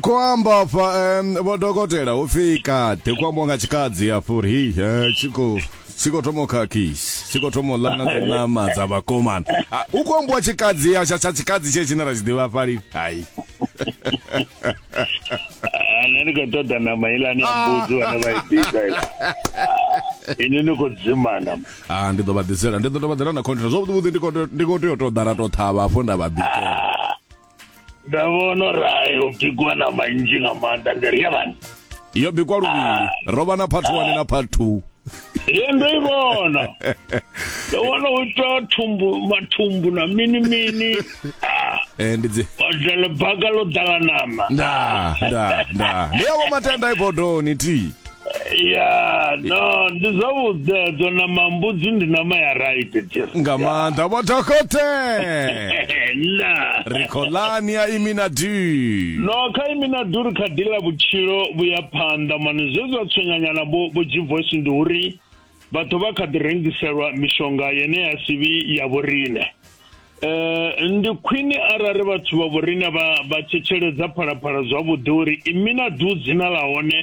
Khou amba afha um, vho dokotela hu pfi kaḓi khou ambiwa nga tshikadzi afho uri hei eh, tshi khou tshi khou thoma u khakhisi tshi khou thoma u ḽa na dzi ṋama dza vhakomana Ah, hu khou ambiwa tshikadzi ya tsha tsha tshikadzi tshe tshine ra tshi ḓivha fhali hai Ah, nṋe ndi khou ṱoḓa ṋama ilani ya mbudzi vhane vha i bika ila Ah, ini ni khou dzimana ah ndi ḓo vha ḓisela ndi ḓo tou vha ḓela na container zwavhuḓi vhuḓi ndi khou tea- ndi khou tea u tou ḓa ra tou ṱhavha afho nda vha bikela ndavhono rayo bikwa na manzhi nga maanḓa ndiri ya vhani yo bikwa luvhili ro vha na part one na part two ye ndo i vhona ndo vhona u ita thumbu mathumbu na mini mini ah, Eh, ndi dzi odele baka ḽo ḓala nama nda nda nda ndi yavho matenda ibodoni ti ya no ndi zwavhuḓe dzo nama mbudzi ndi nama ya right dear. nga maanḓa vho dokote na ri khou lani ya imi na du no kha imi na duri kha dila vhutshilo vhuya phanḓa mani zwe zwa tswenyanyana vho vho g voice ndi uri vha ḓo vha kha ḓi rengiselwa mishonga yene ya sivhi ya vhorine eh ndi khwini arali vhathu vha vhorine vha vha tshetsheledza phalaphala zwavhuḓi uri imi na du dzina ḽa hone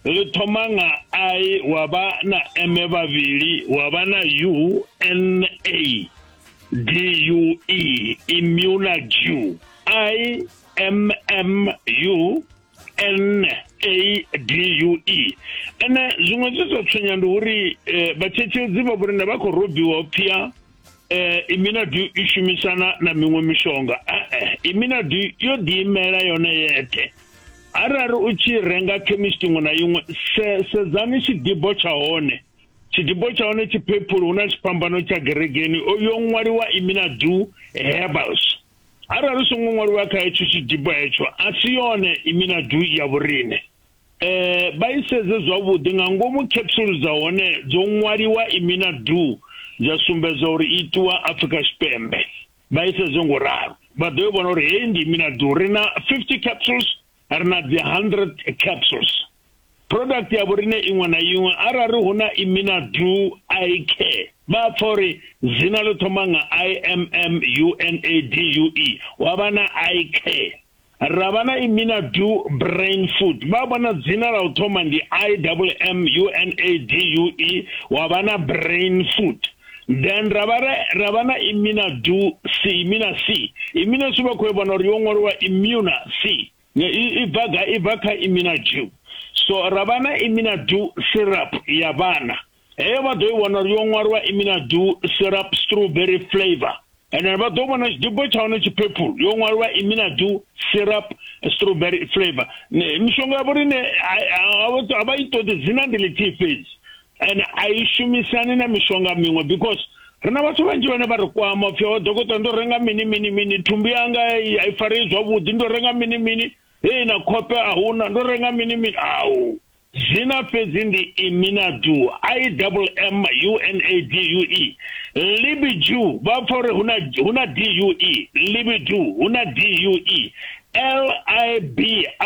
ḽi thoma nga i wa vha na eme vhavhili wa vha na u n a d u e immune i m m u n a d u e ene zwiṅwe zwi zwa tswenya ndi uri eh, vhatshetshedzi vha vhori na vha khou robiwa pfia um eh, iminadu i shumisana na miṅwe mishonga e-e iminadu yo ḓiimela yone yeṱhe arali u tshi renga chemist iṅwe na iṅwe sedzani tshidibo tsha hone tshidibo tsha hone tshiphephulu hu na tshiphambano tsha geregeni yo ṅwaliwa iminadu herbals arali songo ṅwaliwa kha hetsho tshidibo hetsho a si yone imina du ya vhorine eh vha isedze zwavhuḓi nga ngomu capsule dza hone dzo ṅwaliwa imina du dza sumbedza uri itiwa Afrika Tshipembe vha isedze ngo ralo vha ḓo vhona uri heyi ndi imina du ri na 50 capsules ri na dzi 100 capsules product ya vhorine iṅwe na iṅwe arali hu na imina du i care vha pfa uri dzina ḽo thoma nga imm unadue wa vha na i care ra vha na imina du brain food vha vhona dzina ḽa u thoma ndi imm unadue wa vha na brain food then ra vha ra vha na imina du si imina si imina si vha khou vhona uri yo ṅwaliwa imuna si i bva ga i bva kha imina du so ra vha na imina du syrup ya vhana heyo vha ḓo i vhona uri yo ṅwaliwa imina du syrup strawberry flavor ene vha ḓo vhona tshidubo tsha hone tshiphephulu yo ṅwalwa iminadu syrup strawberry flavor mishonga ya vhorine a vha i ṱoḓi dzina ndi ḽithihi fhedzi ene a i shumisani na mishonga miṅwe because ri na vhathu vhanzhi vhane vha ri kwama pfhi o oh, dokotela ndo renga mini mini mini thumbu yanga a i farei zwavhuḓi ndo renga mini mini hei na khope a huna ndo renga mini mini au Zwina fhedzi ndi Iminadu, IMM, UNADUE, Libidu, vha pfa uri hu na DUE, Libidu, hu na DUE,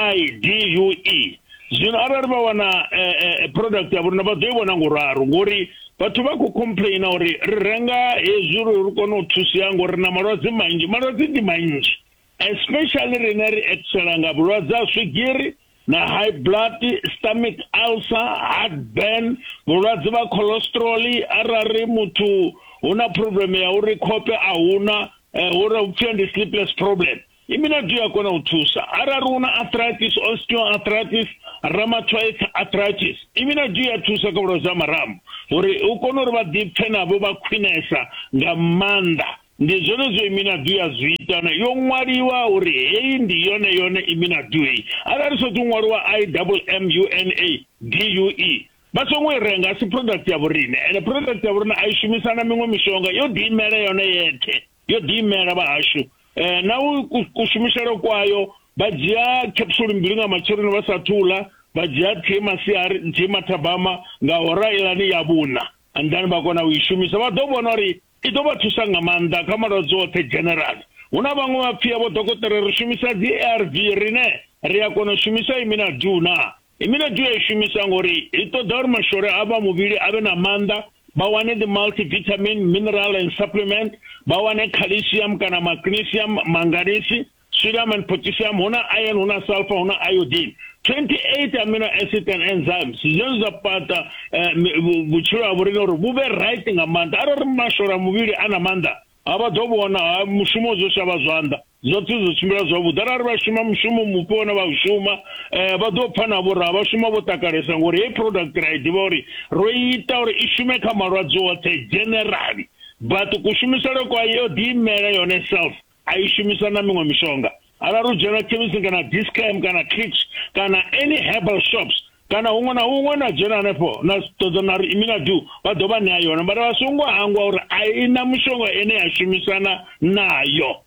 LIBIDUE. Zwino arali vha wana eh, eh, eh, product ya vhorina vha ḓo i vhona nguraro ngori vhathu vha khou complaina uri ri renga hezwi uri ri kone u thusea ngori na malwadze manzhi malwadze ndi manzhi especially rine ri etisela nga vhulwadze ha swigiri na high blood stomach ulcer heartburn vhulwadze vha cholesterol arali muthu hu na problem ya uri khope a huna eh, uri u pfhi ndi sleepless problem imina ndi ya kona u thusa arali una arthritis osteoarthritis rheumatoid arthritis imina ndi ya thusa kha vhulwadze ha marambo uri u kone uri vha ḓipfe navho vha khwinesa nga maanḓa Ndi zwenezwo iminadu ya zwi ita na yo ṅwaliwa uri heyi ndi yone yone iminadu heyi arali i sotou ṅwaliwa i double m u n a d u e vha songo i renga asi product ya vhorine ene product ya vhorine a i shumisa na miṅwe mishonga yo ḓi imela yone yethe yo ḓi imela vha hashu eh na u kushumiselo kwayo vha dzhia capsule mbili nga matsheloni vha sa thula vha dzhia thie masiari thie mathabama nga hora ilani ya vhuna and then vha kona u i shumisa vha ḓo vhona uri I ḓo vha thusa nga maanḓa kha malwadze oṱhe general. Hu na vhaṅwe vhapfia vho dokotela ri shumisa dzi ARV rine ri a kona u shumisa imina du na imina du ya i shumisa ngori i ṱoḓa uri mashole a vha muvhili a vhe na maanḓa vha wane dzi multivitamin mineral and supplement vha wane calcium kana magnesium manganisi Sodium and potassium, huna iron, huna sulfur, huna iodine. 28 amino acid and enzymes zwine zwa fhaṱa eh, vhutshilo ha vhorine uri vhu vhe right nga maanḓa arali mashora muvhili a na maanḓa a vha ḓo vhona ha mushumo zwo shavha zwanḓa zwoṱhe zwo tshimbila zwavhuḓi arali vha shuma mushumo mupe one vha u shuma um vha ḓo pfha navho ra vha shuma vho takalesa ngori heyi product ra i ḓivha uri ro ita uri i shume kha malwadze oṱhe generally but kushumisele kwa yo ḓiimela yone self a i shumisa na miṅwe mishonga arali u dzhena khemisini kana discam kana clicks kana any herbal shops kana huṅwe na huṅwe na dzhena hanefho na ṱoḓa na ri imina du vha ḓo vha ṋea yone mara vha songo hangwa uri a i na mushonga ene ya shumisana nayo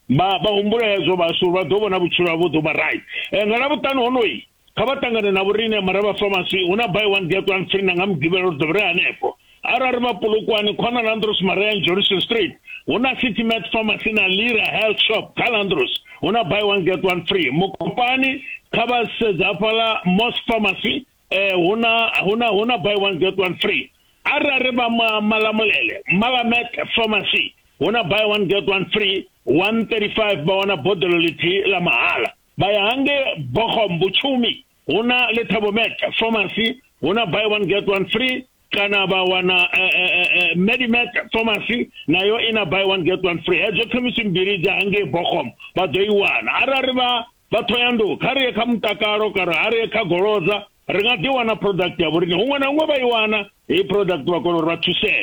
vha vha humbula hezwo vhashu vha ḓo vhona vhutshilo havho ḓo vha right eh, nga lavhuṱanu honoyi kha vha ṱangane na vhoriṋe maraba pharmacy hu na buy one get one free na nga mugivhelo ri ḓo vhre hanefho arali vha pulukwani khona na andros maria johnson street hu na city mat pharmacy na lira health shop kha landros hu na buy one get one free mukopani kha vha sedza hafhaḽa mos pharmacy eh, hu na hu na hu na buy one get one free arali vha malamulele malamet pharmacy hu na buy one get one free 135 vha wana boḓelo ḽithihi ḽa mahala vha ya hangei bohom vhutshumi hu na letabomac pharmacy hu na buy one get one free kana vha wana eh, eh, eh, medimac pharmacy nayo i na buy one get one free hedzo khemisi mbili dza hangei bohom vha ḓo i wana arali vha vha thoyandu kha ri ye kha mutakalo kana a ri ye kha golodza ri nga ḓi wana product ya vhoriṋe huṅwe na huṅwe vha i wana heyi product vha kona uri vha thusee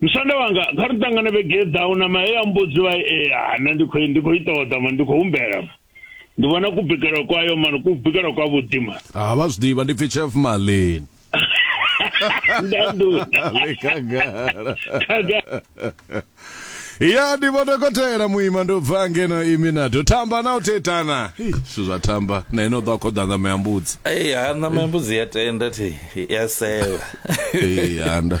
musanda wanga kha ri ṱangane vhege i ḓaho na mahe ya mbudzi vha ea eh, nṋe ndi khou ndi khou i ṱoḓa ma ndi khou humbela ndi vhona ku bikela kwayo mani ku bikela kwa vhuḓi ma ha ah, vha zwi ḓivha ndi pfi chef malin ya ndi vho dokotela muima ndo bva ngeno imi na do tamba na u tetana zwithu zwa tamba na ino ḓo khoḓa ṋama ya mbudzi eyi ha ṋama ya mbudzi ya tenda thi ya seva eyi handa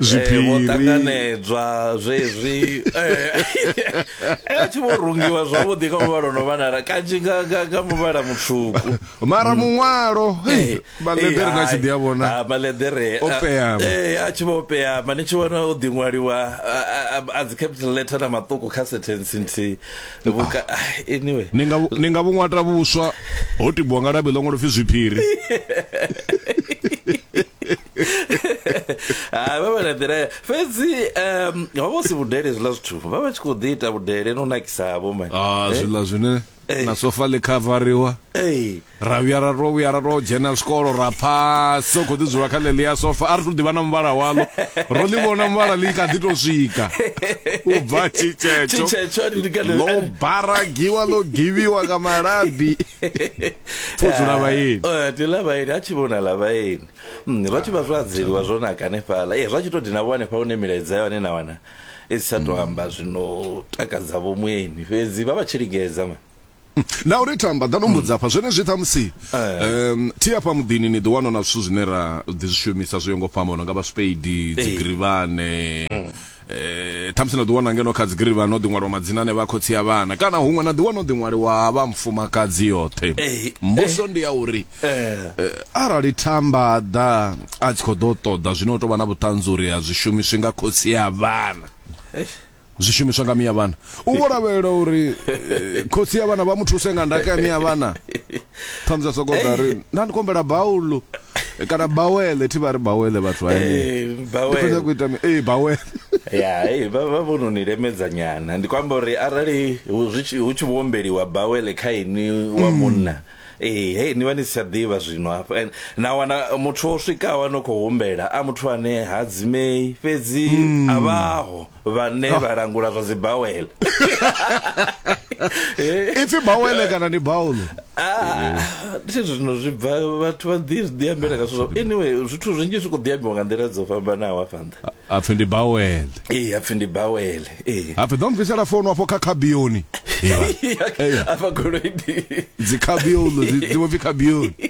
zwiphiri vho ṱanganedzwa zwezwi a tshi vho rungiwa zwavhuḓi kha muvhala no vhanala kanzhi nga muvhala mutswuku mara muṅwalo maḽeḓere na tshi ḓi a vhona maḽeḓere a tshi vho opeama ni tshi vhona o ḓiṅwaliwa a dzi capital letter na maṱuku kha sentence nthihi anyway ni nga vhuṅwata vhuswa ho tibiwa nga labi ḽo ṅwalo pfhi zwiphiri hai vha vha na nḓila ya- fhedzi um ho vha hu si vhudele zwiḽa zwithu vha vha tshi khou ḓi ita vhudele no nakisavho mani ah zwiḽa zwine Eh. na sofa ḽi khavariwa Ei, ra vhuya ra to vhuya ra to dzhena zwikolo ra pha so khou ḓi dzula kha ḽeḽi ya sofa a ri to ḓivha na muvhala waḽo ro ḽi vhona muvhala ḽi kha ḓi to swika u bva tshitshetso tshitshetso a ndi kana- ḽo baragiwa ḽo givhiwa nga malabi Pfudzula vhaeni. Eh, ndi ḽa vhaeni a tshi vhona ḽa vhaeni Mm, zwa tshi vha zwo adzeliwa zwo naka hanefhala e zwa tshi to dina vho hanefha hune milaedza ya hone na wana i si tsha to amba zwino takadza vho mueni fhedzi vha vha tshi lingedza ma na uri tamba ḓa no mbudza afha zwenezwi ṱhamusi Eh. um thi afha muḓini ni ḓi wana na zwithu zwine ra ḓi zwi shumisa zwo yo ngo fhambana nga vhaspeidi dzigirivhane eh thamusi na ḓiwana ngeno kha dzigiri vha no ḓi ṅwaliwa madzina ane vha khotsi a vhana kana huṅwe na ḓiwana o ḓi ṅwaliwa ha vha mfumakadzi yoṱhe eh, mbuso eh. ndi ya uri eh. arali thamba ḓa a tshi khou ḓo ṱoḓa zwino u tou vha na vhuṱanzi uri a zwi shumiswi nga khotsi a vhana zwi shumiswa nga miya vhana u vho lavhelela uri khotsi ya vhana vha mu thuse nga ndaka ya miya vhana ṱhamusi a soko ḓa ri nda ndi kombela baulo eh, kana bawele thi vha ri bawele vhathu vha eh, bawele ku ita eh bawele ya hey vha vha vhono ni lemedza nyana ndi kwamba uri arali hu tshi hu tshi vhombeliwa bawele kha ini wa mm. munna mm. eh hey ni vha ni si tsha ḓivha zwino hafha and na wana muthu o swikaho no khou humbela a muthu ane ha dzimei fhedzi mm. a vhaho vhane vha langula zwa dzi bawel ipfi bawele kana ni baulo ah, thi zwino zwi bva vhathu vha ḓi ḓi ambela nga zwithu anyway zwithu zwinzhi zwi khou ḓi ambiwa nga nḓila dzo fhambanaho afha nṱha apfi ndi bawel ee apfi ndi bawel ee apfi ḓo mbvisela founu afho kha khabioni afha goloi ndi dzi khabiolo dzi vho pfi khabioni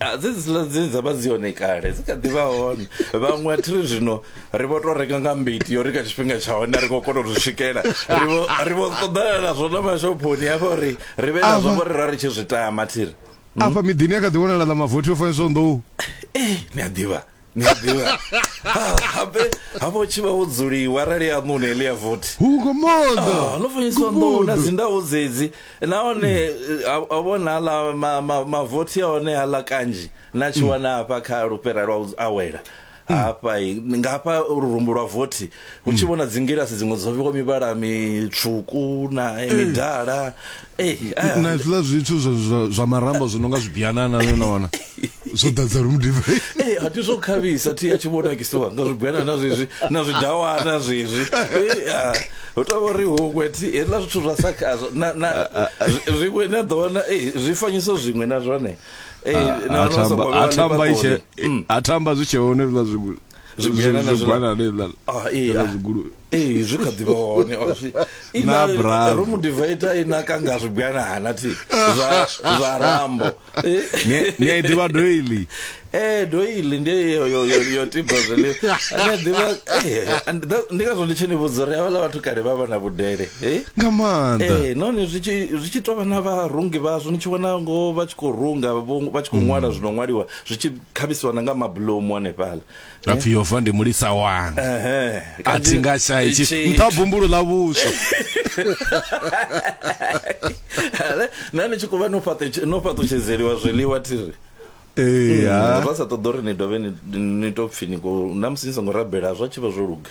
Ah, dze dziḽa dze dza vha dzi hone kale dzi kha ḓi vha hone vhaṅwe a thi ri zwino ri vho tou renga nga mbiti yo ri kha tshifhinga tsha hone a ri khou kona u zwi swikela ri vho ri vho ṱoḓana nazwo na mashophoni hafha uri ri vhe nazwo Ava. ngori ra ri tshi zwi tama thi ri afha miḓini a kha ḓi wanala na mavothi o faniswaho nḓou ee ni a ḓivha ni a ḓivha Ah, habe habe u tshi vha wo dzuliwa arali ya ṋuni heḽi ya vothi hu ngo moḓa Ah, no fanyiswa nḓou na dzindawo dzedzi nahone eh, a- a vhona aḽa ma- ma- mavothi a hone aḽa kanzhi na tshi wana hafha kha lupera lwa u awela hafha i- nga hafha lurumbu lwa vothi hu tshi vhona dzingilasi dziṅwe dzo vhewa mivhala mitswuku na eh, midala Eh, eh. na zwiḽa zwithu zwa marambo zwi no nga zwibianana no na wana zwo ḓadza ri mudiva ee eh, a ti zwo khavhisa thi a tshi vho nakisiwa nga zwibianana zwezwi na zwidawana zwezwi ah, hu tou vha ri huṅwe thi hezwiḽa zwithu zwa sa khazwo zwiṅwe na ḓo wana ee zwi fanyiso zwiṅwe na zwone ee na wana sa kwa vha a thamba zwi tshe hone zwiḽa zwiṅwe zwi kha ḓivha hone ro mu divaita i naka nga zwigwana hana thi zwa rambo ni a i ḓivha doili ee doili ndi yo tiba zwiḽiwa ndi ngazwo ndi tshi ni vhudza uri havhala vhathu kale vha vha na vhudele nga maanḓa ee nahone zwi tshi tou vha na vharungi vhazwo ni tshi vhona ngo vha tshi khou runga vha tshi khou ṅwala zwi no ṅwaliwa zwi tshi khavhisiwa na nga mabulomu hanefhala apfi yova ndi mulisa wanga a thi nga shayi nṱha bumbulu ḽa vhuswa na ni tshi khou vha no fhaṱutshedzeliwa zwiḽiwa thiri eya mm, ra sa ṱoḓa uri ni dovhe ni to pfi ni na musi ni songo rabela zwa tshi vha zwo luga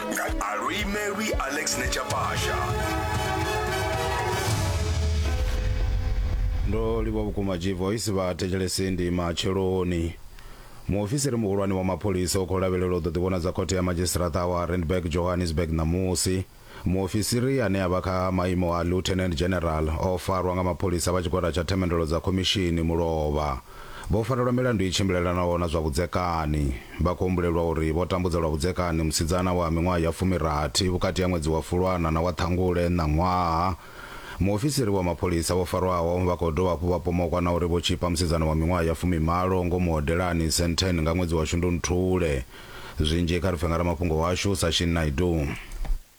Arui Mary Alex Nechapasha. ndo livha vhukuma g voice vha thetshelesi ndi matsheloni muofisiri muhulwane wa mapholisa u khou lavhelela u ḓo ḓivhonadza khothe ya madzhisiṱiraṱa wa randburg johannesburg ṋamusi muofisiri ane a vha kha maimo a lieutenant general o farwa nga mapholisa vha tshigwada tsha themendelo dza khomishini mulovha Vho farelwa milandu i tshimbilelanaho na zwa vhudzekani. Vha khou humbulelwa uri vho tambudza lwa vhudzekani musidzana wa miṅwaha ya fumirathi vhukati ha ṅwedzi wa Fulwana na wa Ṱhangule ṋaṅwaha. Muofisiri wa mapholisa vho farwaho vha khou dovha hafhu vha pomokwa na uri vho tzhipa musidzana wa miṅwaha ya fumimalo ngomu hodelani Sandton nga ṅwedzi wa Shundunthule. Zwinzhi kha ri pfe nga ramafhungo washu Sashin Naidoo.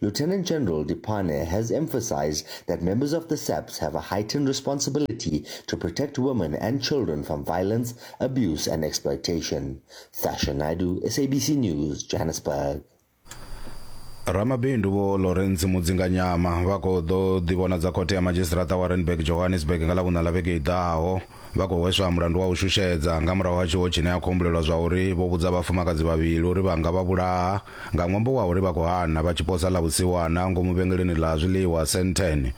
Lieutenant General Dipane has emphasized that members of the SAPS have a heightened responsibility to protect women and children from violence, abuse and exploitation. Sasha Naidu, SABC News, Johannesburg. ramabindu vho lawrence mudzinganyama vha khou ḓo ḓivhonadza khothe ya madzhisiṱiraṱa wa renburg johannesburg nga ḽa vhuṋa ḽa vhege i ḓaho Vha khou hweswa mulandu wa u shushedza nga murahu ha tshiwo tshine a khou humbulelwa zwa uri vho vhudza vhafumakadzi vhavhili uri vha nga vha vhulaha nga ṅwambo wa uri vha khou hana vha tshi posa ḽa vhusiwana ngomu vhengeleni ḽa zwiḽiwa Sandton.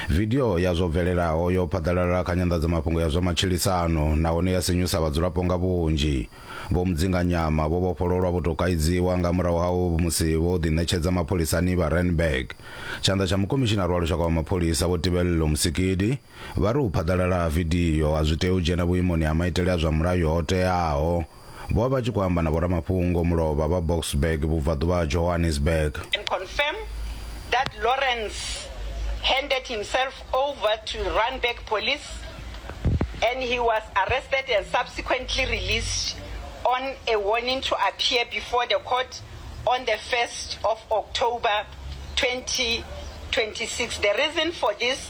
Vidio ya zwo bvelelaho yo phaḓalala kha nyanḓadzamafhungo ya zwa matshilisano nahone ya sinyusa vhadzulapo nga vhunzhi. Vho Mudzinganyama vho vhofhololwa vho tou kaidziwa nga murahu ha musi vho ḓiṋetshedza mapholisani vha Randburg. Tshanḓa tsha Mukomishinari wa Lushaka wa Mapholisa, Vho Tibello Musikidi, Vha ri u phaḓalala ha vidio a zwi tei u dzhena vhuimoni ha maitele a zwa mulayo ho teaho. Vho vha vha tshi khou amba na vhoramafhungo mulovha vha Boksburg, vhubvaḓuvha ha Johannesburg. and confirm that Lawrence handed himself over to Randburg Police and he was arrested and subsequently released on a warning to appear before the court on the first of October, 2026. The reason for this.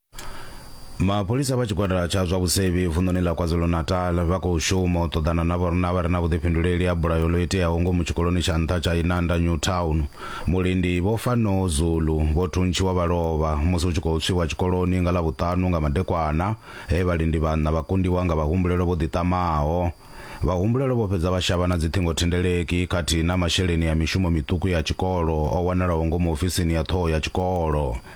mapholisa vha tshigwada tsha zwa vhusevhi vunḓuni ḽa kwazulu-natal vha khou shuma u ṱoḓana na vhorna vha re na vhuḓifhinduleli ha bulayo ḽo iteaho ngomu tshikoloni tsha nṱha tsha inanda new town mulindi vho fano zulu vho thuntshiwa vha lovha musi hu tshi khou tswiwa tshikoloni nga ḽa vhuṱanu nga madekwana he vhalindi vhanna vha kundiwa nga vhahumbulelo vho ḓiṱamaho vhahumbulelo vho fhedza vha shavha na dziṱhingothendeleki khathihi na masheleni ya mishumo miṱuku ya tshikolo o wanalaho ngomu ofisini ya ṱhoho ya tshikolo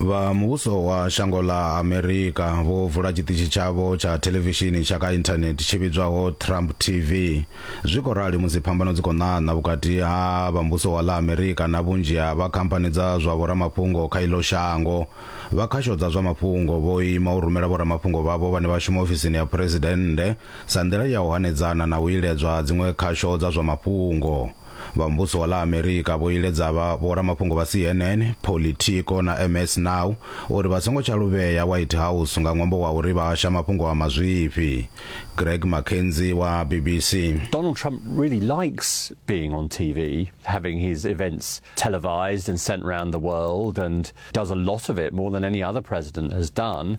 vha muvhuso wa shango ḽa amerika vho vula tshiṱitshi tshavho tsha thelevishini tsha kha inthanethe tshi vhidzwaho trump tv zwi khou rali musi phambano dzi khou ṋaṋa vhukati ha vha muvhuso wa ḽa amerika na vhunzhi ha vha khamphani dza zwa vhoramafhungo kha iḽo shango vha khasho dza zwa mafhungo vho ima u rumela vhoramafhungo vhavho vhane vha shuma ofisini ya phuresidennde sa nḓila ya u hanedzana na u iledzwa dziṅwe khasho dza zwa mafhungo vha Muvhuso wa ḽa Amerika vho iledza vha vhoramafhungo vha CNN, Politico na MS Now uri vha songo tsha luvhea White House nga ṅwambo wa uri vha hasha mafhungo a mazwifhi. Greg McKenzie wa BBC. Donald Trump really likes being on TV, having his events televised and sent round the world and does a lot of it, more than any other president has done.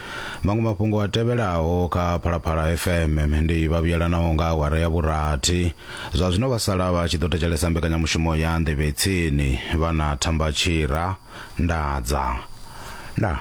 Maṅwe mafhungo a tevhelaho kha Phalaphala FM ndi vha vhuyelanaho nga awara ya vhurathi. Zwa zwino vha sala vha tshi ḓo thetshelesa mbekanyamushumo ya Nḓevhe Tsini vha na Thamba Tshira Ndadza. Ndaa.